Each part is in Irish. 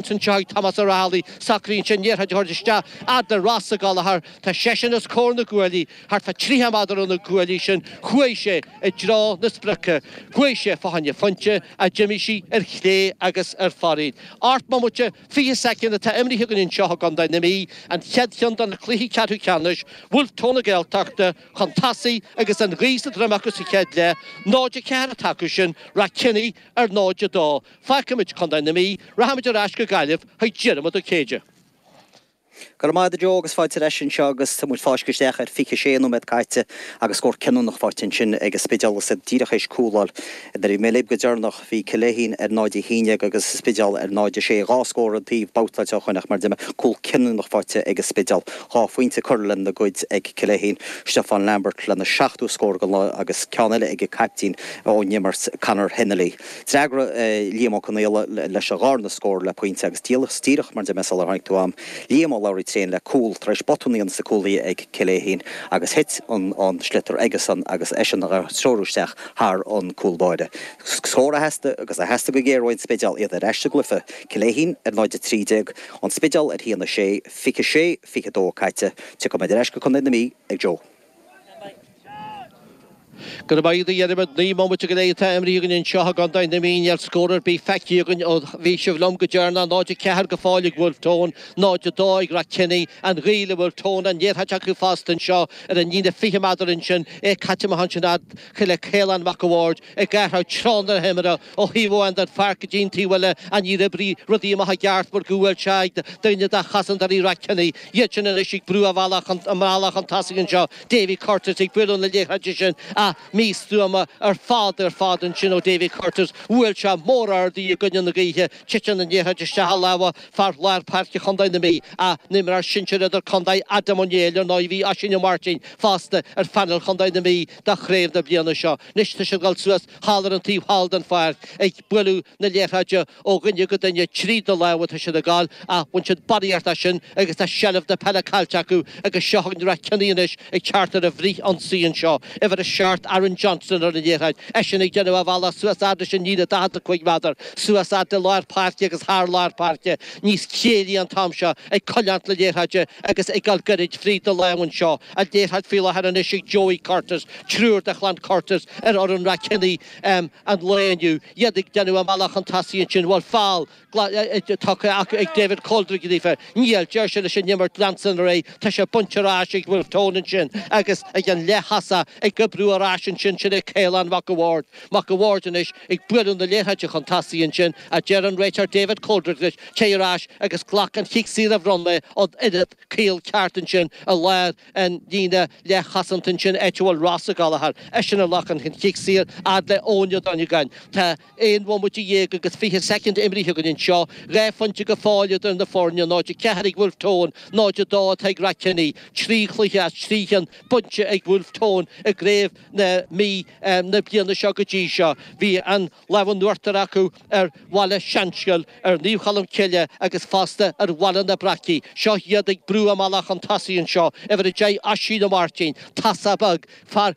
anseo chuig Tomás Ó Raghallaigh socraíonn sé an liathróid a thabhairt isteach fhad le Ross Ó Gallchóir tá seisean os comhair na gcuaillí thart fa tríocha meadar ó na cuaillí sin chuaidh sé i dtreo na sprice chuaidh sé fa choinne phoinnte a d'imigh sí ar chlé agus ar fóraoil ocht mbomaite fiche soicind atá imrithe againn anseo i gCondae na Mí an chéad cheann do na cluichí ceathrú ceannais Bhulf-Tón na Gaeltachta chun tosaigh agus an ghaoth sa droim acu sa chéad leath 0-4 atá acusan Rathkenny ar 0-2 Fágfaimid Contae na Mí, Rachaimid ar ais go Gaillimh chuig Diarmuid Ó Céide. Go raibh maith agat Joe agus fáilte ar ais anseo agus tá muid ag fáisceadh isteach ar 26 nóiméad caite agus scór cinniúnach faighte ansin ag an Spidéal is iad díreach éis cúláil. Nuair a bhí mé libh go deireanach. Bhí Cill Fhéichín ar 0-11 agus an Spidéal ar 0-6. Dhá scór an taobh babhtáilte ó shoin ach mar deir mé cúl cinniúnach faighte ag an Spidéal. Dhá phointe curtha lena gcuid ag Cill Fhéichín, Stiofán Lambert lena seachtú scór den lá agus ceann eile ag an caiptín ón imirt, Conor Hennelly. D'fhreagra Liam Ó Conaola leis a dharna scór le poinnte agus díreach mar deir mé sular tháinig tú agam. Liam Ó Labhraí Tréan le cúl tar éis botún a dhéanamh sa gcúllíne ag Cill Fhéichín agus thit an sliotar aigesean agus eisean á threorú isteach thar an cúl báire. Scór a theastaigh agus a theastaigh go géar uaidh an Spidéal, iad ar ais sa gcluiche. Cill Fhéichín ar 0-13, An Spidéal ar 1-6, 26 22 caite. Tiocfaimid ar ais go Contae na Mí ag Joe. Go raibh maith agat a Dhiarmaid. Naoi mbomaite go leith atá imrighthe againn annseo i gContae na Mí níl aon scór ar bith feicthe againn ó bhí sibh liom go deireanach. 0 4 go fóill ag Bhulf Tón, 0 2 ag Rathkenny. An ghaoth le Bhulf Tón, an liathróid acu fosta annseo ar an líne fiche meadar annsin, é caithte amach annsin fhad le Caolán Mac an Bhaird. ag athrú treo na himeartha ó thaobh amháin den pháirc go dtí'n taobh eile ach níor oibrigh rudaí amach i gceart mar go bhfuil sé ag duine de chosantóirí Rathkenny iadsan anois ag brú a mbealach chun tosaigh anseo David Curtis ag bualadh na liathróide sin ach místuama ar fad ar fad ansin ó David Curtis bhuail sé mór ard í i gcoinne na gaoithe titeann an liathróid isteach i lámha fear lár páirce Chontae na Mí ina imreoir sinsir idirchontae Adam Ó Néill ar ndóigh bhí Oisín Ó Máirtín fosta ar phainéal Chontae na Mí do chraobh na bliana seo. Anois tá siad ag dul suas thall ar an taobh thall den pháirc ag bualadh na liathróide ó dhuine go duine, tríd na lámha atá siad ag dul ach bhain siad barraíocht as sin agus tá seilbh na peile caillte acu agus seo chugainn Rathkenny anois ag teacht ar an bhfrith-ionsaí anseo, uimhir a seacht, Aaron Johnston ar an liathróid, eisean ag déanamh a bhealach suas fhad leis an líne 45 meadar, suas fhad le lár páirce agus thar lár páirce, níos céillí an t-am seo, ag coinneáilt na liathróide agus ag dul gairid fríd na lámha anseo. an liathróid faoi láthair anois ag Joey Curtis, triúr de chlann Curtis ar fhoireann Rath Kenny an lae inniu, iad ag déanamh a mbealach chun tosaigh ansin, an bhfuil feall tugtha ag David Coldrick dófa, níl, deir sé leis an imirt leanstan ar aghaidh, tá sé bainte ar ais ag Wolfe Tone ansin agus ag an leath-thosaí ag oibriú ar ais ansin, sin é Caolán Mac a' Bhaird, Mac a' Bhaird anois ag bualadh na liathróide chun tosaigh ansin, a deir an réiteoir David Coldrick leis, téigh ar ais agus glac an chic saor a bhronn mé ort oiread Caol ceart ansin i lár an líne leathchosanta ansin, áit a bhfuil Ross Ó Gallchóir eisean a ghlacann an chic saor, fhad le Eoin Ó Donnagáin. Tá aon bhomaite dhéag agus fiche soicind imrithe againn anseo. Dhá phointe go fóill idir na foirne, 0-4 ag Wolfe Tone, 0-2 atá ag Rath Kenny. Trí chluiche as trí chionn bainte ag Wolfe Tone i gCraobh na Mí na bliana seo go dtí seo. Bhí an. lámh in uachtar acu ar Bhaile Seanascail, ar Naomh Cholm Cille agus fosta ar Bhaile na Breacaí. Seo iad ag brú a mbealach chun tosaigh anseo, uimhir 10 Oisín Ó Máirtín, casadh beag, fear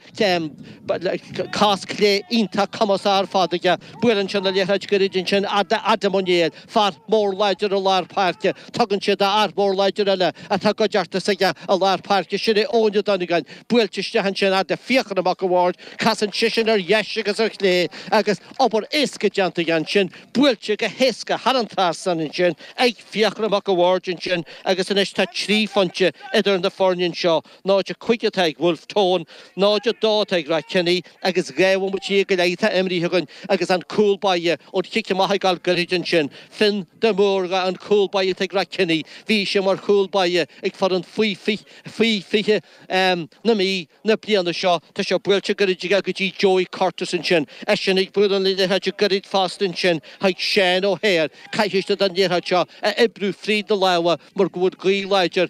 cos clé iontach cumasach ar fad aige, buaileann sé an liathróid gairid ansin fhad le Adam Ó Néill, fear mór láidir i lár páirce. Tugann sé d'fhear mór láidir eile atá i gcuideachta aige i lár páirce sin é Eoin Donnagáin. Buailte isteach ansin fhad le Fiachra Mac a' Bhaird. Casann seisean ar dheis agus ar chlé agus obair éasca déanta aige ansin. Buailte go héasca thar an trasnán ansin ag Fiachra Mac a' Bhaird ansin agus anois tá trí phointe idir na foirne anseo. 0-5 atá ag Wolfe Tone, 0-2 atá ag Rath Kenny agus dhá bhomaite dhéag go leith atá imrithe againn agus an cúl báire ón chic amach ag gabháil gairid ansin. Fionn de Mórdha an cúl báire atá ag Rath Kenny. Bhí sé mar chúl báire ag foireann faoi 20 na Mí na bliana seo. Tá sé buailte gairid aige go dtí Joey Curtis ansin. Eisean ag bualadh na liathróide gairid fosta ansin chuig Seán Ó hAodhair. Caithfidh siad an liathróid seo a oibriú fríd na lámha mar go bhfuil gaoth láidir